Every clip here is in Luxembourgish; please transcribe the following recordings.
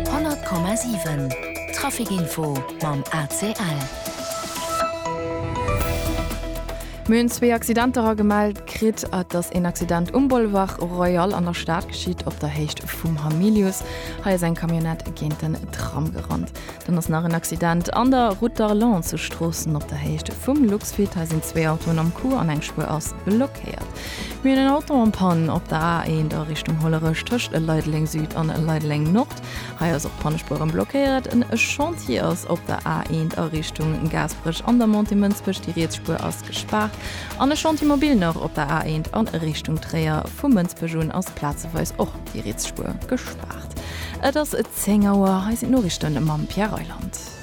100,7 Trafic-Info mam ACL. Mir hunn zwee Accidenter agemellt kritt. Et ass een Accident um Boulevard Royal an der Stad geschitt, op der Héicht vum Hamilius. Hei ass eng Camionnette géint den Tram gerannt. Dann ass nach en Accident an der Route d'Arlon zu Stroossen op der Héicht vum Luxfeed. Hei sinn zwee Autoen am Coup an eng Spuer ass blockéiert. Mir hunn en Auto en Panne op der A1 a Richtung Hollerech tëscht Leideleng Süd an Leideleng Nord. Hei ass och d'Pannespueren blockéiert. En Chantier ass op der A1 a Richtung Gaasperech an der Montée Mënsbech, déi riets Spuer ass gespaart. An e Chantier mobil nach op der A1 a Richtung Tréier. Vu Mënsbech un ass plazeweis och déi riets Spuer gespaart. Et ass 10 Auer, hei sinn d'Noriichte mam Pierre Reyland.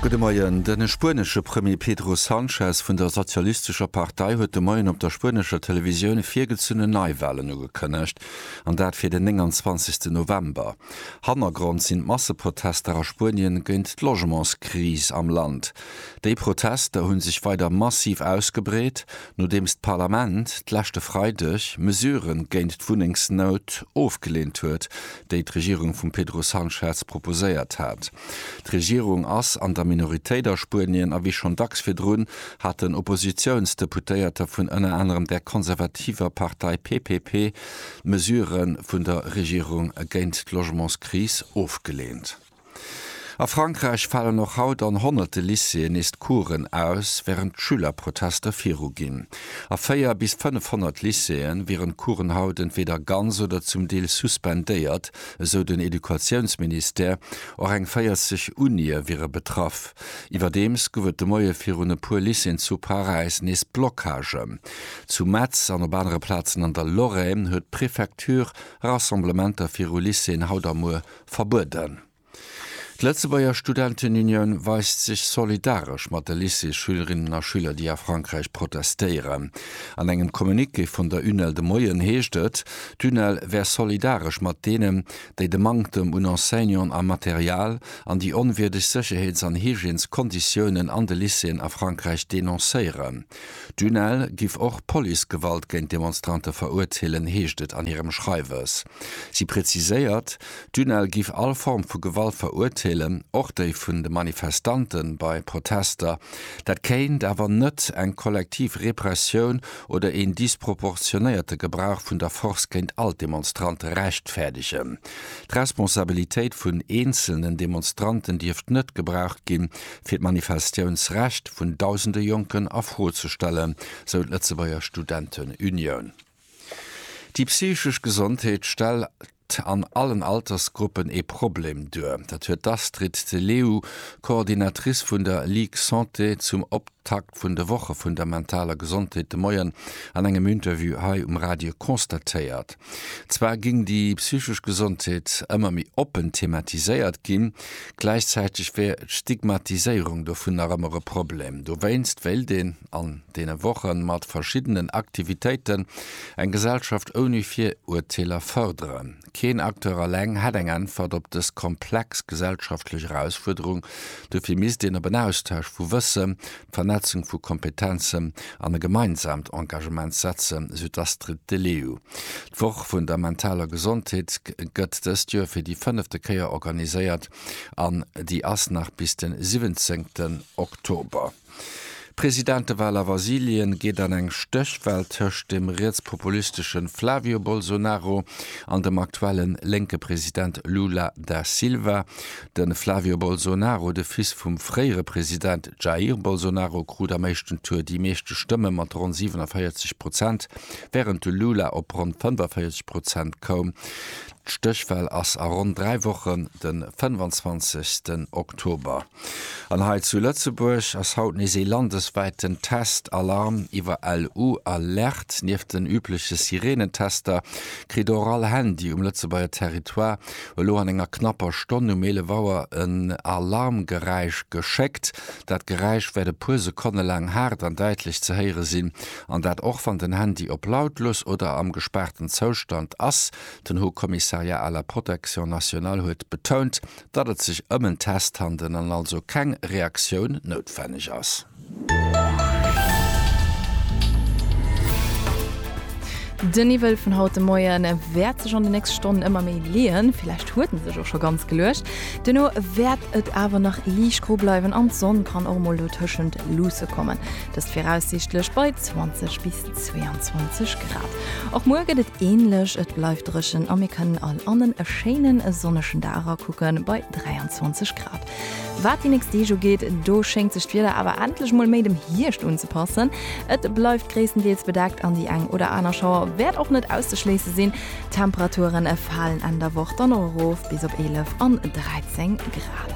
Gudde Moien. De spuenesche Premier Pedro Sanchez vun der sozialistescher Partei huet de Moien op der spuenescher Televisioun virgezunnen Neiwalen ugekënnegt, an dat fir den 29 November. Hannergrond sinn d'Masseprotester a Spuenien géint d'Logementskris am Land. Déi Protester hu sech weider massiv ausgebreet. Nodeems d'Parlament d'leschte Freideg Mesurë géint d'Wunnengsnout ofgeleent huet, déi d'Regierung vum Pedro Sanchez proposéiert hat. D'Regierung ass an der Minoritéit a Spuenien a wéi schonn dacks virdrun haten Oppositiounsdeputéierter vun ënner anerem der konservativer Partei PPP d'Mesurë vun der Regierung géint d'Logementskris ofgeleent. A Frankräich falen och haut an honnerte Lycéeën nees d'Couren aus, wärend d'Schülerprotester viruginn. A 4 bis 500 Lycéeë wieren d'Couren haut entweeder ganz oder zum Deel suspendéiert, esou den Educatiounsministère. Och eng 40 Unië wiere betraff. Iwwerdeems gouf et de Moie virun e puer Lycéeën zu Paräis nees Blockagen. Zu Metz an op anere Plazen an der Lorraine huet d'Prefecture Rassemblementer viru Lycéeën haut a muer verbueden. D'Lëtzebuerger Studentenunion weist sech solidaresch mat de Lycées-Schülerinnen a schüler, déi a Frankräich protestéieren. An engem Communiqué vun der UNEL de Moien heescht et, d'UNEL wär solidaresch mat deenen, déi de Manktem un Enseignanten a Material an déi onwierdeg Sécherheets an Hygièneskonditiounen an de Lycéeën a Frankräich denoncéieren. D'UNEL giff och Policegewalt géint Demonstrante verurteelen, heescht et an hirem Schreiwes. Si preziséiert, d'UNEL giff all Form vu Gewalt verurteelen, och déi vun de Manifestante bei Protester. Dat kéint awer net eng kollektiv Repressioun oder een disproportionéierte Gebrauch vun der Force géint all d'Demonstrante rechtfäerdegen. D'Responsabilitéit vun eenzelnen Demonstranten dierft net gebraucht ginn, fir d'Manifestiounsrecht vun dausende Jonken a Fro ze stellen, sou d'Lëtzebuerger Studentenunioun. Déi psychesch Gesondheet stellt an allen Altersgruppen ee Problem duer. Dat huet d'Astrid de Leeuw, Coordinatrice vun der Ligue Santé, zum Optakt vun de Woche vun der mentaler Gesondheet de Moien an engem Interview hei um Radio constatéiert. Zwar géing déi psychesch Gesondheet ëmmer méi oppen thematiséiert ginn, Gläichzäiteg wär d'Stigmatiséierung dovun nach ëmmer e Problem. Dowéinst wéilt een an deene Woche mat verschiddenen Aktivitéiten eng Gesellschaft ouni Viruerteeler fërderen. Keen Acteur alleng hätt eng Äntwert op dës komplex gesellschaftlech Erausfuerderung. Dofir misst een op en Austausch vu Wëssen, d'Vernetzung vu Kompetenzen an e gemeinsaamt Engagement setzen, sou d'Astrid Deleeau. D'Woch vun der mentaler Gesondheet gëtt dëst Joer fir déi fënnefte Kéier organiséiert an déi ass nach bis de 17 Oktober. D'Presidentewal a Vasilien geet an eng Stéchwal tëscht dem rietspopulistesche Flavio Bolsonaro an dem aktuelle lénke President Lula da Silva. De Flavio Bolsonaro, de Fils vum fréiere President Jair Bolsonaro, krut am éischten Tour déi meeschte Stëmme mat ronn 47 Prozent. Wärend de Lula op ronn 45 Prozent koum, d'Stéchwal ass a ronn dräi Wochen, de 25. Oktober. An hei zu Lëtzebuerg ass haut nees ee landeswäiten Test Alarm iwwer LU Alerte. Nieft den übleche Sireenentester kritt och all Handy um Lëtzebuerger Territoire elo an enger knapper Stonn um 11 Auer en Alarmgeräisch geschéckt. Dat Geräisch wäert e puer Sekonne laang haart an däitlech ze héiere sinn. An dat och wann den Handy op lautlos oder am gespaarten Zoustand ass. Den Haut Commissariat à la Protection nationale huet betount, datt et sech ëm en Test handelen an also keng Reaktioun noutwenneg ass. Den Niwwel vun haut de Moien wäert sech an de nächste Stonnen ëmmer méi leeën, villäicht huet en sech och scho ganz geluecht. Duerno wäert et awer nach liicht gro bleiwen an d'Sonn kann och mol dotëschent luusse kommen. Dëst viraussiichtlech bei 20 bis 22 Grad. Och muer gëtt et änlech, et bleift dréchen a mir kënnen all an e schéine sonnegen Dag erakucken bei 23 Grad. Wat déi nächst Deeg ugeet, do schéngt sech d'Wieder awer endlech mol méi dem Hierscht unzepassen. Et bleift gréisstendeels bedeckt an déi eng oder aner Schauer wäert och net auszeschléisse sinn. D'Temperature falen Enn der Woch dann och erof bis op 11 an 13 Grad.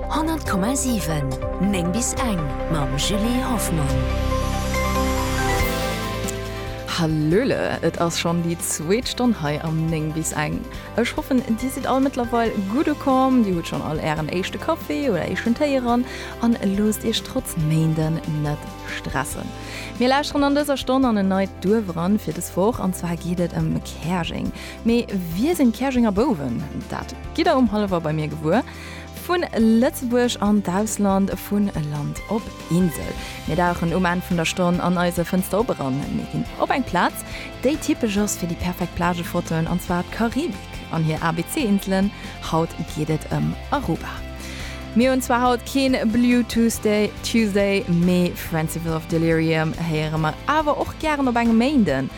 100,7 9 bis eng mam Julie Hoffmann. Hallöle, et ass schonn déi zweet Stonn hei am 9 bis eng. Ech hoffen dir sidd all mëttlerweil gutt ukomm, dir hutt schonn all ären éischte Kaffi oder éischten Téi eran an loosst iech trotz Méinden net stressen. Mir lauschteren an dëser Stonn an en neit Duerf eran fir des Woch an zwar geet et ëm Käerjeng. Mee wie sinn d'Käerjenger Bouwen? Dat gitt der um Halleffer bei mir gewuer. Vu Lëtzebuerg an d'Ausland, vu Land op Insel. Mir dauchen um Enn vun der Stonn an eise Fënster op eran. Mir ginn op eng Plaz, déi typesch ass fir déi perfekt Plagefotoen, an zwar d'Karibik an hir ABC-Inselen. Haut geet et ëm Aruba. Mir hunn zwar haut keen Blue Tuesday, Tuesday, mee Friendship of Delirium héiere mer awer och gären op engem Méinden.